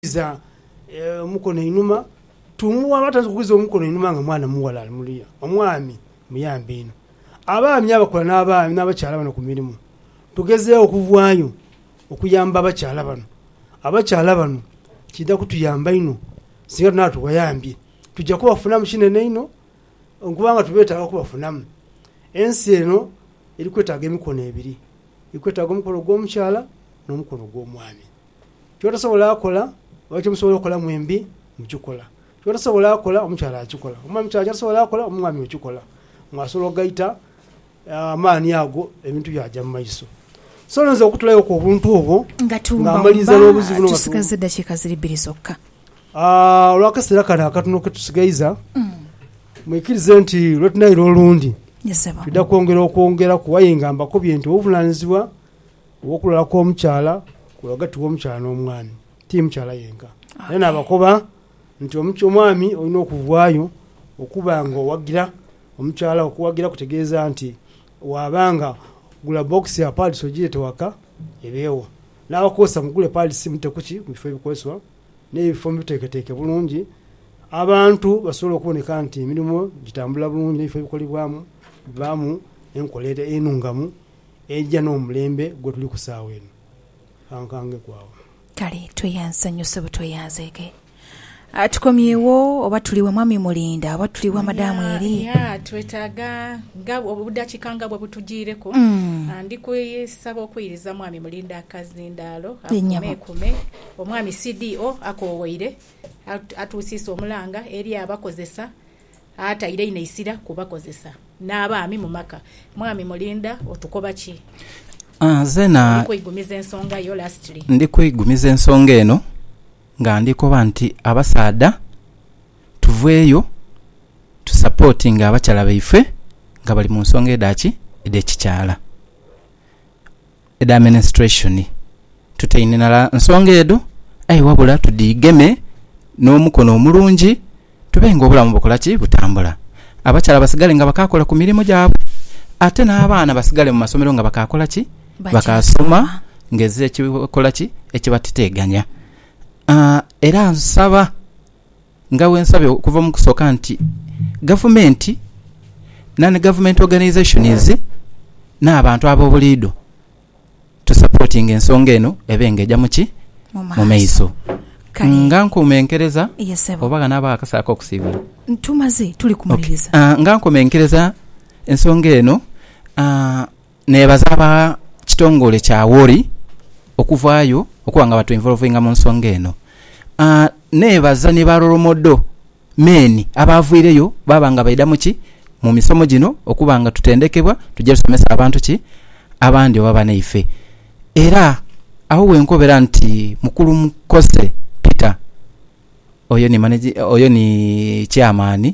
kugwiza omukono inhuma, tumuwa oba taidha kugwiza omukono inhuma nga mwana mughala ali muluya, omwami muyambe inho. Abaami abakola n'abakyala bano ku mirimu, tugezeegho okuvaayo okuyamba abakyala bano. Abakyala bano kiidha kutuyamba inho singa naabo tubayambye. Twidha kubafunamu kinene inho kubanga tubetaaga okubafunamu. Ensi eno eri kwetaaga emikono ebiri, eri kwetaaga omukono ogw'omukyala n'omukono ogw'omwami. Ky'otasobola kola oba kyemusobola okola mwembi mukikola. Ky'otasobola kola omukyala akikola, oba omukyala ky'atasobola kola omwami okikola. Mwasobola ogaita amaani ago ebintu byaja mu maiso. So nze okutulayoku obuntu obwo Nga tuwumbawumba, tusigaza eddakiika ziri bbiri zokka. Olw'akaseera kano akatono ke tusigaiza, mwikirize nti lwe tunaira olundi twidha kwongera okwongeraku. Aye nga mbakobye nti obuvunaanyizibwa Okulwala kw'omukyala kuba ghagati w'omukyala n'omwami, ti mukyala yenka. Era naabakoba nti omwami olina okuvaayo okuba nga owagira omukyala wo. Okuwagira kutegeeza nti waaba nga gula bbokisi ya paadisi ogireete waka ebeegho. N'abakozesa mugule paadisi mudhite ku ki? Mu bifo ebikozesebwa n'ebifo mubuteeketeeke bulungi abantu basobole okuboneka nti emirimo gitambula bulungi n'ebifo ebikolebwamu bibaamu enkola enungamu. Eidha n'omulembe gwe tuli ku saagha eno. Kankangeku agho. Kale tweyansanhuse butweyanzeege. Tukomyewo oba tuli wa Mwami Mulinda oba tuli wa Madaamu Eli? Ya, twetaaga nga obudakiika nga bwebutujiireku. Ndi kusaba okwiriza Mwami Mulinda akazindaalo akumekume. Omwami CDO akoowoire atuusiise omulanga eri abakozesa ataire inho eisira ku bakozesa n'abaami mu maka. Mwami Mulinda otukoba ki? Ndi kweigumiza ensonga yo lastly. Ndi kweigumiza ensonga eno nga ndi koba nti abasaadha tuveeyo tu supportinge abakyala baife nga bali mu nsonga edha ki? Edh'ekikyala. edha menstruation. Tuteninala nsonga edho aye wabula tudhigeme n'omukono omulungi tube nga obulamu bukola ki? Butambula. Abakyala basigale nga bakaakola ku mirimu gyabwe ate n'abaana basigale mu masomero nga bakaakola ki? Bakaasoma ng'ezira ekikola ki? Ekibateteeganya. Era nsaba. Nga bwensabe okuva mukusoka nti gavumenti, non-government organisations n'abantu abobuliido tu supportinge ensonga eno ebe nga eja muki? Mumaiso. Nga nkomenkereza oba ghanabagho akasaagho akokusiibula? Tumaze, tuli kumaliriza. Nga nkomenkereza ensonga eno. Neebaza aba kitongole kya Worri okuvaayo okuba nga batweinvolovinga mu nsonga eno. Neebaza ni ba rolomodo men abaavwireyo baaba nga baidha mu ki? Mu misomo gino okuba nga tutendekebwa tuje tusomese abantu ki? Abandi oba banaife. Era agho we nkobera nti Mukulu Mukose Peter, oyo ni managi, oyo ni Chairman,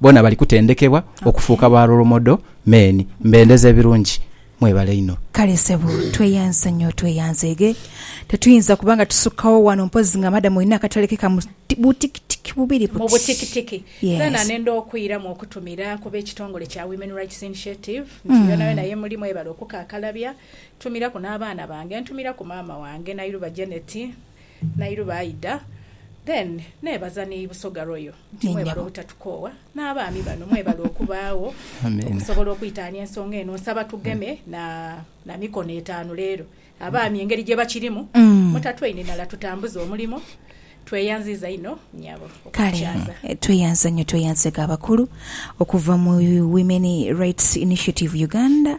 Boona bali kutendekebwa okufuuka ba role model men. Mbendeza ebirungi. Mwebale inho. Kale ssebo tweyanse nyo tweyanzege tetuyinza kuba nga tusukagho wano mpozi nga madam olina akatale ke ka butikitiki bubiri buti. Mubutikitiki Yes. Nenda okwiramu okutumira ku b'ekitongole kya Women Rights Initiative nti yonayona yemuli mwebale okukakalabya ntumiraku n'abaana bange ntumiraku maama wange Nairuba Janet, Nairuba Aidah then nebaza ni Busoga Royal. nti mwebale obutatukoowa n'abaami bano mwebale okubaagho okusobola okwitaania ensonga eno. Nsaba tugeme na na mikono etaanu leero. Abaami engeri gye bakirimu mutatweinhinala tutambuze omulimo. Tweyanziiza inho nyabo Kale okukyaza. eh, tweyanza nnyo tweyanzega abakulu okuva mu Women Rights Initiative Uganda